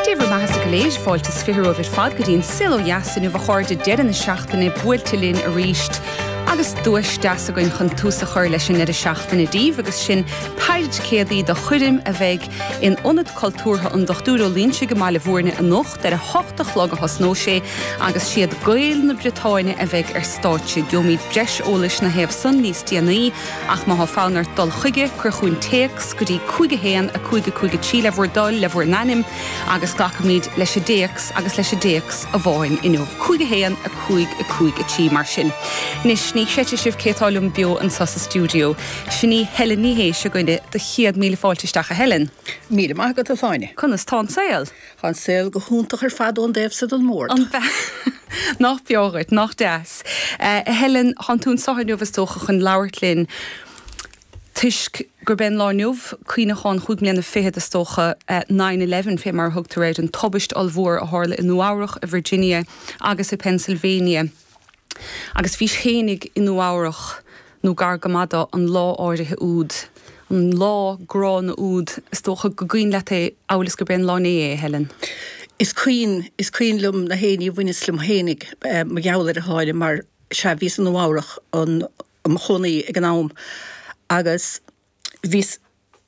Dé bhur mbeathasa go léir is fáilte is fiche romhaibh ar fad go dtí an saol ó dheas inniu a chairde deireadh na seachtaine buailte linn arís agus duais deas againn chun tús a chur leis an ndeireadh seachtaine daoibh agus sin péire ticéadaí do choirm a bheidh in Ionad Cultúrtha an Dochtúir Ó Loingsigh i mBaile Mhúirne anocht. Ar a hocht a chlog a thosnóidh sé agus is iad Gaeil na Briotáine a bheidh ar stáitse. Geobhaimid breis eolais ina thaobh san níos déanaí ach má thá fonn ort dul chuige, cuir chugainn téacs go dtí 51553 le bhur dtoil, le bhur n-ainm agus glacfaimid leis an dtéacs agus leis an dtéacs amháin inniu. 51553 mar sin. Anois, ní chreidfidh sibh cé tá liom beo anso sa stiúideo. Sin í Helen Ní Shé againne. Do chéad míle fáilte isteach a Helen. Míle maith agat, a Shláine. Conas tá an saol? Tá an saol go hiontach ar fad ón dtaobh so den mbord. An b'ea? Nach breá dhuit, nach deas. A Helen, thán tú anso inniu is dócha chun labhairt linn toisc gurb é an lá inniu cuimhneachán chúig mbliana fichead is dócha Nine Eleven, fé mar a thugtar air, an tubaist ollmhór a tharla i Nua Eabhrach, i Virginia agus i Pennsylvania. Agus bhís fhéinig i Nua Eabhrach, nó gar go maith dó, an lá áirithe úd. An lá gránna úd. Is dócha go gcuimhin leat é, amhail is gurb é an Lá Inné é, a Helen. Is cuimhin. Is cuimhin liom na héinní a bhaineas liom fhéinig, mar gheall air, a Shláine, mar, sea, bhíos i Nua Eabhrach, i mo chónaí ag an am, agus, Bhíos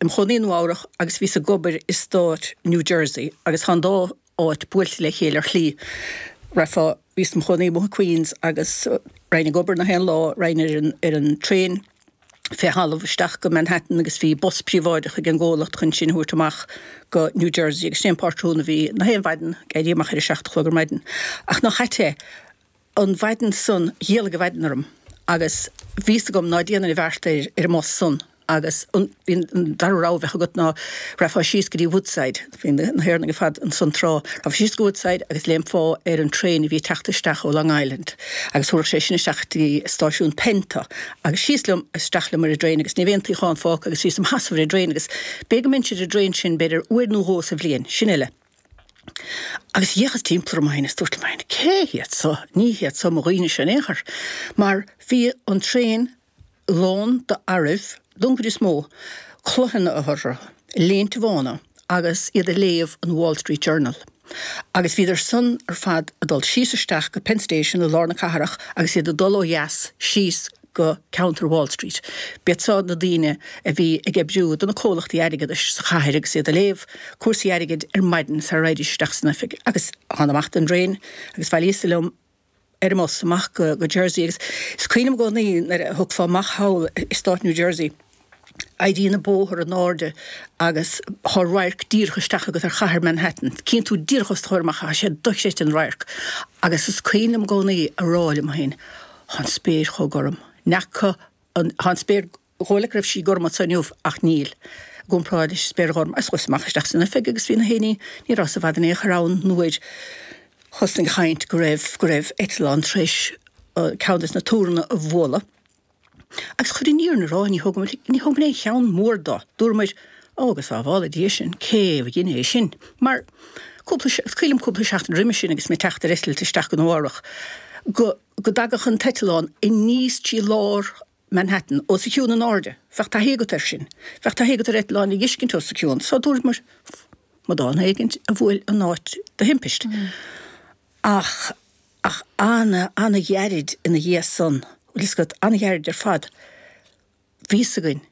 im chónaí i Nua-Eabhrac agus bhíos ag obair i stát New Jersey agus tá an dá áit buailte le chéile ar shlí. Raghfá, bhíos im chónaí amuigh i Queens agus raghainn ag obair na haon lá, raghainn ar an traein fé thalamh isteach go Manhattan agus bhí bus príobháideach ag an gcomhlacht chun sinn a thabhairt amach go New Jersey agus sin é an pátrún a bhí na haon mhaidin, ag éirí amach ar a seacht a chlog ar maidin. Ach nach ait é? an mhaidin san, d'éalaigh an mhaidin orm agus bhí fhios agam ná déanfainn an bheart ar an mbus san agus an dara rogha a bheadh agat ná raghfá síos go dtí Woodside, bhí na hÉireannaigh ar fad ansan tráth, raghfá síos go Woodside agus léimfeá ar an traein a bhí ag teacht isteach ó Long Island agus thabharfadh sé sin isteach dtí stáisiún Penn tú agus síos liom, isteach liom ar an dtraein agus ní raibh aon tsuíochán fágtha agus bhíos im sheasamh ar an dtraein agus b'fhéidir go mbeinnse ar an dtraein sin b'fhéidir uair nó dhó sa bhliain, sin uile. Agus d'fhéachas timpeall orm féin is dúrt liom féin, cé hiad so? Ní hiad so mo dhaoinese in aon chor, mar bhí an traein lán d'fhearaibh don chuid is mó, culaitheanna orthu, léinte bhána agus iad ag léamh an Wall Street Journal. Agus bhíodar san ar fad ag dul síos isteach go Penn Station i lár na cathrach agus iad ag dul ó dheas síos go ceantar Wall Street. B'iad seo na daoine a bhí ag oibriú do na comhlachtaí airgeadais sa chathair agus iad ag léamh cúrsaí airgid ar maidin sara raghaidís isteach san oifig. Agus thána amach don dtraen agus bhailíos liom ar an mbus amach go Jersey agus is cuimhin liom i gcónaí nuair a thiocfá amach thall i stát New Jersey, Éiríonn an bóthar in airde agus tá radharc díreach isteach agat ar chathair Manhattan. Cíonn tú díreach os do chomhair amach ach is é dochreidte an radharc agus is cuimhin liom i gcónaí a rá liom féin Tá an spéir chomh gorm. Ní fheaca an, tá an spéir chomh like raibh sí gorm anso inniu ach níl, i gcomparáid leis an spéir ghorm. Agus chuas amach isteach san oifig agus bhí nach éinne, ní rabhas i bhfad in aon chor ann nuair a thosnaigh an chaint go raibh, go raibh eitleán tar éis ceann des na túranna a bhualadh. Agus chun an fhírinne a rá, ní thógamar, ní thógamar aon cheann mór do. Dúramar, Ó, go sábhála Dia sinn, cé a dhein é sin? Mar, cúpla, is cuimhin liom cúpla seachtain roimis sin agus mé ag teacht ar eitilt isteach go Nua Eabhrac, go, go dtagadh an t-eitleán aníos trí lár Manhattan, os a chionn in airde. Bheadh taithí agat air sin. Bheadh taithí agat ar eitleáin a dh'fheiscint os a cionn. So dúramar, amadán éigin a bhuail an áit de thimpist. Ach, ach ana, ana-ghairid ina dhiaidh san, bhfuil fhios agat, ana-ghairid ar fad, bhí fhios againn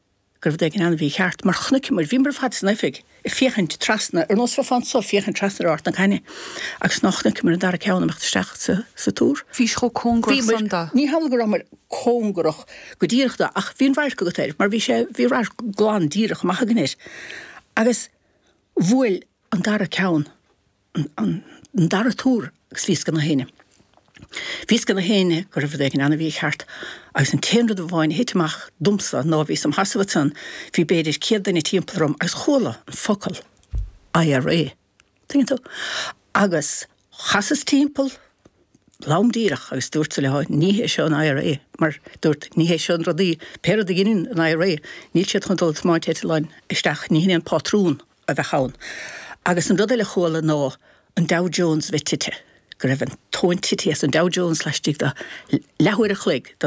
go raibh rud éigin ana-mhícheart, mar chonaiceamar, bhíomar ar fad san oifig ag féachaint trasna, ar nós bheifeá anso, féachaint trasna ar Ard na Caithne, agus ná chonaiceamar an dara ceann ag imeacht isteach sa, sa túr. Bhí sé chomh cóngarach san do. Bhíomar, ní hamhlaidh go rabhamar cóngarach go díreach do, ach bhí an radharc agat air, mar bhí sé, bhí radharc glan díreach amach againn air. Agus bhuail an dara ceann an dara túr agus bhí fhios ag nach aoinne. Bhí fhios ag nach aoinne go raibh rud éigin ana-mhícheart, agus an t-aon rud amháin a thit amach domsa ná bhíos im sheasamh ansan, bhí b'fhéidir céad duine timpeall orm agus chuala an focal IRA, tuigeann tú? Agus chasas timpeall, lom díreach, agus dúrtsa leo, ní hé seo an IRA, mar dúrt, ní hé seo an rudaí, pé rud a dheineann an IRA, níl siad chun dul ag tiomáint eitleáin isteach, ní hin é an pátrún. a bheadh ann. Agus an rud eile a chuala ná an Dow Jones a bheith tite, go raibh an tóin titithe as an Dow Jones laistigh de leathuair an chloig den